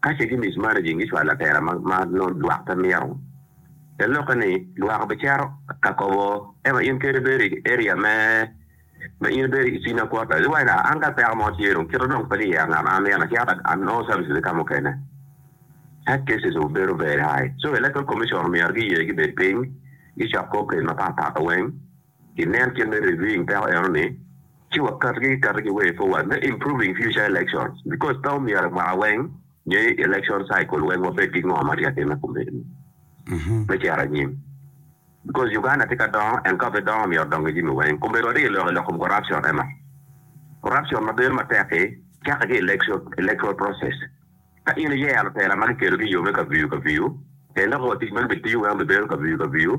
Ka ce gimis maraji in gicwalo atera ma nongo lwak pe mito, te lokke ni lwak obicero ka kobo en wa in kede ibedo i area me ma in ibedo i cina kwota gi wai an ka peko mo tye dong kito dong pe ni yer ngat ma amito na cito a nongo services ki ka mukene health cases obedo very high so electoral commission omyero giye gibed piny gicok kor ked mapat pat weng I nen kit me reviewing peko eno ni, ci wa katgi ki katgi way forward me improving future elections because pe omyero i mwaka weng nyo i election cycle weng wa bed ki ngo ma tye ka time kumeno me cito anyim because Uganda tye ka dongo and ka pe dongo myero odong ki jami weng kumeno wa ryelo i lok kom corruption ema corruption ma bedo matek i cake ki electoral process ka in iyero lutela ma ki kelo ki yo me kaviyu kaviyu en dok wa tic meno bi tiyo weng bi bedo kaviyu kaviyu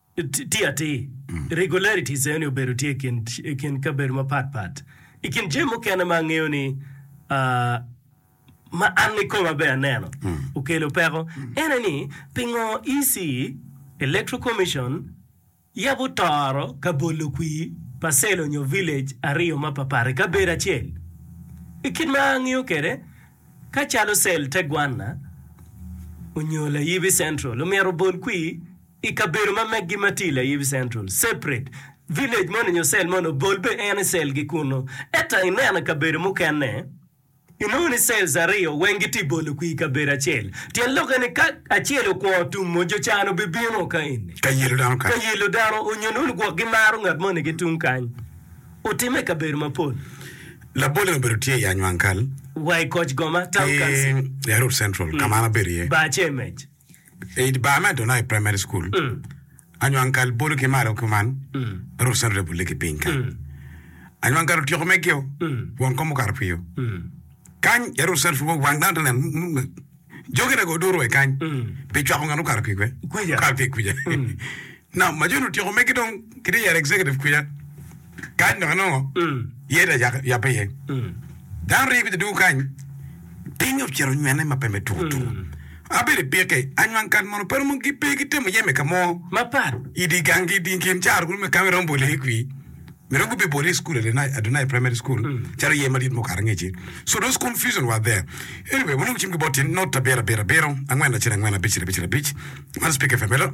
Tye atir, regularities eno-ni obedo tye i kin kabedo mapat pat. I kin jami mukene ma angeyo ni, ma an ikoma bene aneno okelo peko, en aye ni, pingo EC, Electoral Commission, yabo toro ka bolo kwir pa cell onyo village aryo ma papat i kabedo acel? I kit ma angeyo kwede, ka calo cell te gwanna onyo layibi central omyero obol kwir, I kabedo ma meggi ma tye i Layibi Central, separate village moni nyo cell moni obol be en i cell gi kunnu. Ento ineno i kabedo mukene, inongo ni cells aryo weng gitye i bolo kwir i kabedo acel. Tyen lokke ni ka acel okwongo tumo, jo can obibino ka eni. Ka yelo dano kany. Ka yelo dano onyo inongo ni gwok gimaro ngat moni ki tung kany. Otimme i kabedo mapol. Labolle obedo tye i Anywang Kal. Wa i Koch Goma, Town Council. Ki Yarut Central, ka ma an abedo iye. Bar Cemej. I dye bar me Adonai Primary School, Anywangkal bolo ki malo kuman ma rwot Sandra bulle ki piny kany. Anywangkal otyeko megeo won kom okato pio. Kany ya rwot Sandra pud wa wang dano te neno nung nung jogi nago oduro wa kany pi cwako ngat mukato pi kwe? Kuja. Mukato pi kuja. Nam ma jo ni otyeko megi dong kite yero executive kwica kany dok anongo ye ta yape ye dano ringo kwica dugu kany piny ocito onywene ma pe me tuku tuku abedo i pike anywang kat mono pe romo gi pe gitemo yeme i kamo mapat i di gang gi di kin caro kulu me kame romo bole i kwi me romo gube bole i school adonai adonai primary school caro ye madit mukato ngeci so those confusion were there anyway wanongo cim ki bot tin not abiro abiro abiro angwen lacel angwen abicel abicel abic man speaker femelo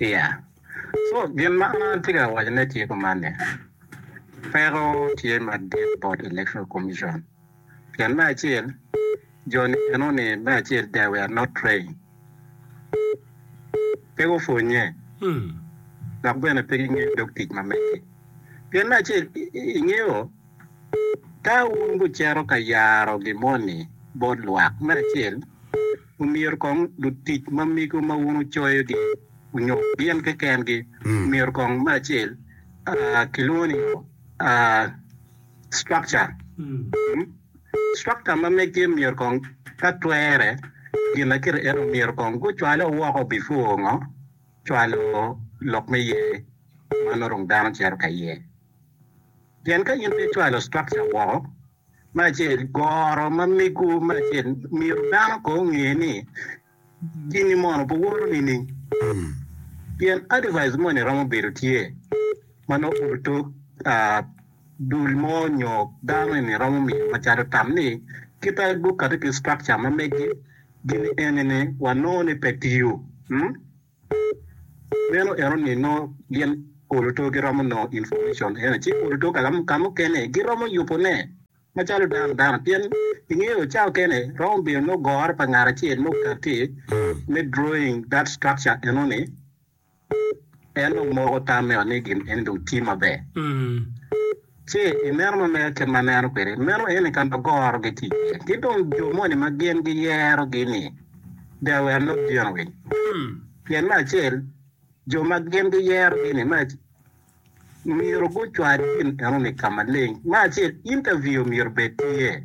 Iya. Co, gin ma an atye ka wacone tye kuman ni, peko tye madit bot Electoral Commission pien me acel, jo-ni gino ni me acel they were not trained, pe gupwonnye dok bene pe gingeyo dog tic ma megi. Pien me acel, ingeyo, ka wun wucito ka yaro gin moni bot lwak, me acel, Omyero kong lutic ma mego ma wun wucoyogi onyut gin kekengi. Omyero kong me acel kilwongo ni structure. Structure ma meggi myero kong ka twere ginakite ento omyero kong gucwale woko before ngo cwalo lok me ye ma nongo dano cito ka iye. Pien ka in pe icwalo structure woko Me acel, goro ma mego me acel myero dano ko onge ni gini mono pe woro nining? Pien advice moni romo bedo tye ma nongo obedo tok dul mo nyo dano eni romo miyo macalo tam ni kita gukati ki structure ma megi gin enini wanongo ni pe tiyo. Meno en oni nongo gin oluto giromo nongo information ene ci oluto kamukene giromo yubo ne macalo dano dano pien ingeyo cawa okene romo bedo nongo goro pa ngat acel ma okati me drawing that structure enoni en dong moko tam me ot ni gin eni dong tye maber. Ce i meno ma mega kit ma aneno kwede, meno eni ka ma goro gitye iye, ki dong jo moni ma gin giyero-gi-ni bia wer lub dyeno winy. Pien me acel, jo ma gin giyero-gi-ni me acel myero gucwal gin eno-ni ka maleng. Me acel, intaviu myero bed tye.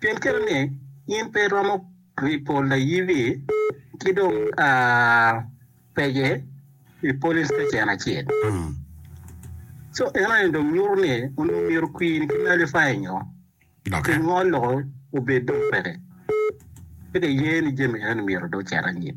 Pien kare ni in pe iromo ripo layibi ki dong pege i polis me cen acel. Co eno ni dong nyuto ni onongo myero kwiri ki nalifayi nyo ki ngol loko obed dong peke. Pe ki ye ni jami eno ni myero dong ocit anyim.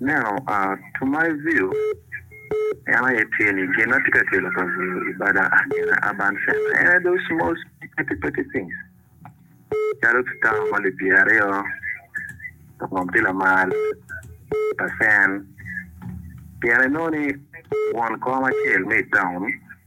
Neno a To my view en aye tye ni gin ma tye ka kelo kabedo i bada agene urban center en aye those small petty petty things calo citown ma lipye aryo ngom tye lamal pa cen pien inongo ni won kom acel me itown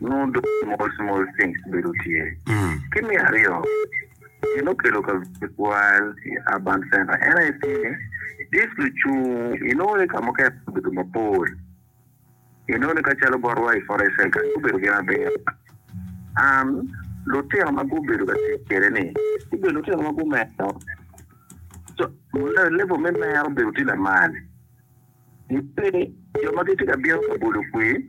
Nongo dong small small things bedo tye. Ki me aryo, gin okelo kabedo twal i urban center en aye pi ni, this lucung inongo ni ka mukene gubedo mapol, inongo ni ka calo botwa i forest center ni gubedo gin abiro and lutino ma gubedo ka tic kwede ni gubedo lutino ma gumero, level me mero bedo tye lamal. Gibed jo ma gitye ka bino ka bolo kwir,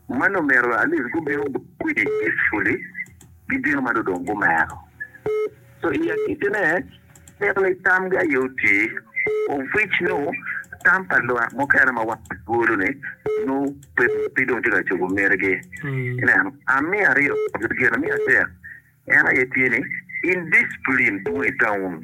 ma lumero Alice gubino bolo kwir peacefully, gibino ma dong gumero. So i agikine, atito ni tamgi aye oti, of which nongo tam pa lwak mukene ma wan walwolo-ni nongo pe dong tye ka cobo mitigi. Ineno? A Me aryo, lageni me adek en aye tye ni, indiscipline dwong i taun.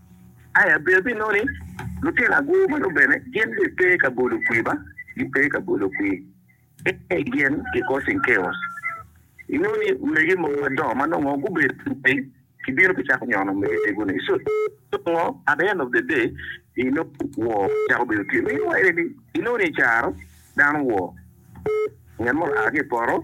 I abedo pi noni, lutino agwo meno bene gin be pe ka bolo kwi ba, gin pe ka bolo kwi. Ee, gin ki causing chaos. I noni, omege mogo madongo ma nongo gubedo lupiny gibino gicako nyono omege tegoni. So, nongo at the end of the day, i noni woo cako bedo tye. Meanwhile, i noni i caro dano woo, ngat mo oa ki i poto,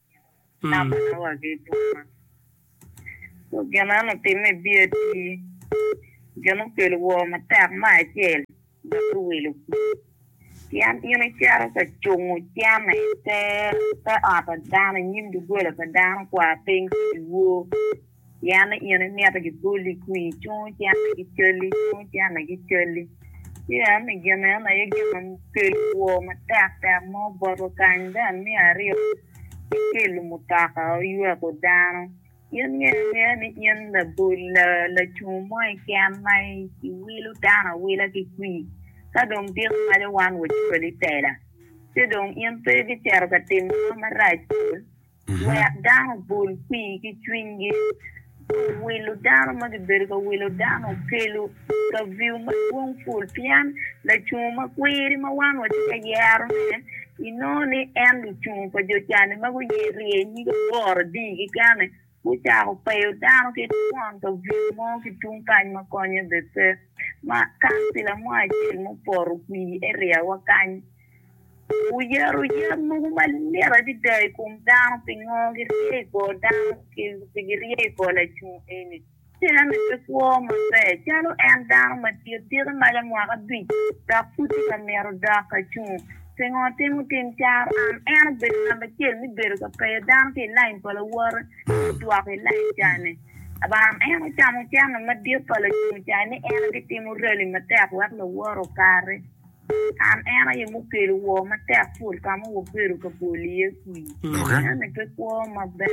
namba ma wagi boma. Dok gin eno otimme bye atir, gin okelo woo matek me acel dok giwilo kwir, pien in icito ka cungo cene i te ot pa dano, i nyim doggola pa dano, kwa piny ki dyewor. Pien in imito giboli kwii cung ci an aye gicalli, cung ci an aye gicalli. Pien i gin eno aye gin ma kelo woo matek tek mo botwu kany. Ben me aryo ki kelo mutoka oyweko dano. In nge nge ni in labol la lacung mo i ken ma iwilo dano awila ki kwii ka dong tiko maco wan wacwali tela ci dong in pe ibiceto ka timo ngo marac bol. Wek dano obol kwir ki cwinygi. Dong wilo dano ma gibedo ka wilo dano okelo kaviu madwong pul pien lacungo ma kwiri ma wan watye ka yerone, inongo ni en lucungo pa jo can-ni ma guye rye nyig aboro adii kekeni, gucako peyo dano ki twon kaviu mo ki tung kany ma konye bene pe. Ma kancila mo acel mupoto kwir area wa kany. Wuyero yam mogo malit adada i kom dano, pingo girye i kor dano kengi pe girye i kor lacoo eni? Ci en aye kwo maber calo en dano madit, tite malo mwaka abic dok pud tye ka mito dok ka cung. Pingo watimo tim caro? An en obedo namba acel me bedo ka peyo dano ki i lain pa lawote me dwoko i lain cane. Abaram en ocamo cente madit pa lacoo cayo ni en aye bitimo rali matek wek lawote okare. An en aye mukelo woo matek pol ka ma wabedo ka bol iye kwir. Eno-ni pe kwo maber.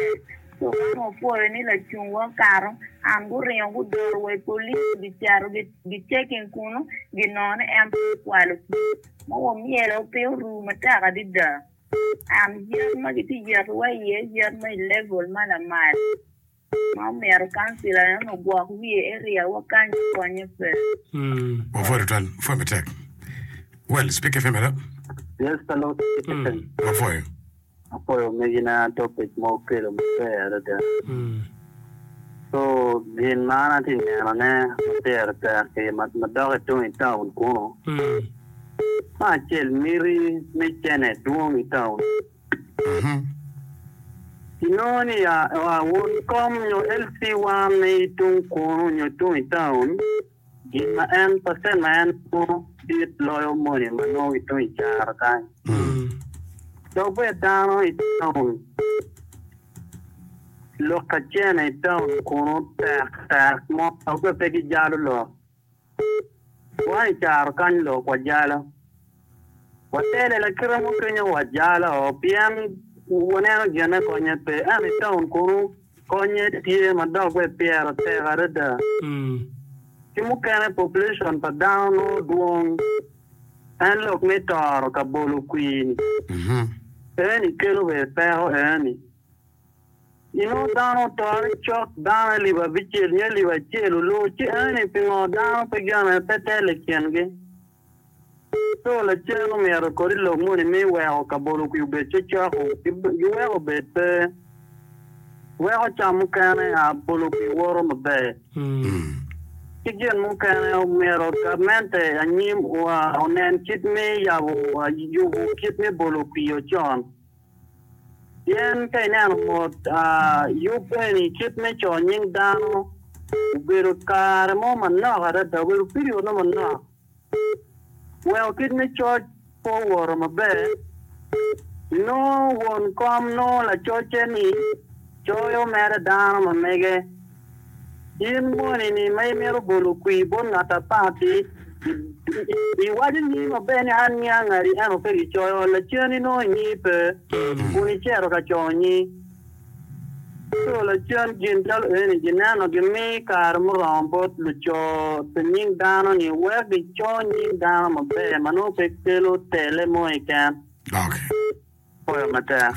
Coo man wapwoyo ni lacungwa okato, and guringo gudoro wa i police gicito gi checking kunu ginongo ni en pe okwalo kwir ma wamyelo piny oruu matek adada. And yat ma gitye yeto wa iye yat ma i level ma lamal. Ma omyero kancila en ogwok wiye eriya wa kany konye pe. Yes pa Lord Citizen. Apwoyo megi na topic ma okelo maber adada. Co gin ma an atye neno ne ma pire tek ki ma dok i tung i town kunu ma acel miti me cene dwong i town. I nongo ni ya wun kom nyo LC wa me i tung kunu nyo tung i taun, gin ma en pasen ma en nongo dit loyo moni ma nongo ki tung i caro kany. Dok bed dano i taun, lok ka cene i taun kunu tek tek mo dok bed pe ki jalo lok. Wa i caro kany lok wajalo. Watele lakite mo kenyo wajalo pien waneno gine konye pe. Ento i taun kunu konye tye ma dok bene pyere tek adada. Ki mukene population pa dano nongo dwong. En lok me toro ka bolo kwir-ni eni kelo bene peko eni. Inongo dano otore cok, dano alip abicel nyo alip acel olur, ci eni pingo dano pe gene pe tel i kingi? Ento lacen omyero kodi lok moni mi iweko kabodo kwi obed cocoko, giweko obed pe, weko cam mukene a bolo kwi woto maber. Ki gin mukene, omyero gabmente anyim onen kit mi yabo, yubo kit me bolo kwi ocon. Pien ka ineno mot yub eni kit me co nying dano obedo kare mo manok adada, obedo period mo manok, weko kit me coc pe owoto maber, inongo won kom nongo lacocce-ni coyo mere dano ma mege. In moni-ni ma imito bolo kwir bot ngat apapi, iwaco nyingi maber ni, 'An nyiya ngati, ento ka gicoyo, lacen inongo nyingi pe, kun icito ka coyo nyingi. Ento lacen gin calo eni gineno gimi kare muromo bot luco pi nying dano-ni wek gico nying dano maber ma nongo pe kelo tele mo keken. Pwoyo matek.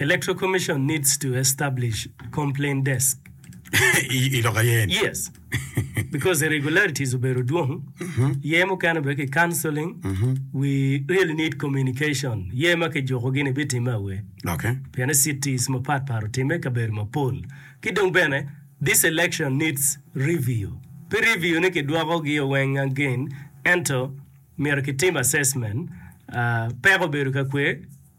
Electoral Commission needs to establish complaint desk. I lok aye en. Yes. Because irregularities obedo dwong. Ye mukene bene ki counseling. We really need communication. Ye ma kijukogi ni bitimme awe. Okay. Pienni cities mapat pat otimme i kabedo mapol. Ki dong bene, this election needs review. Pe review ni kidwokogi o weng again, ento myero kitim assessment. Ah, peko obedo ka kwe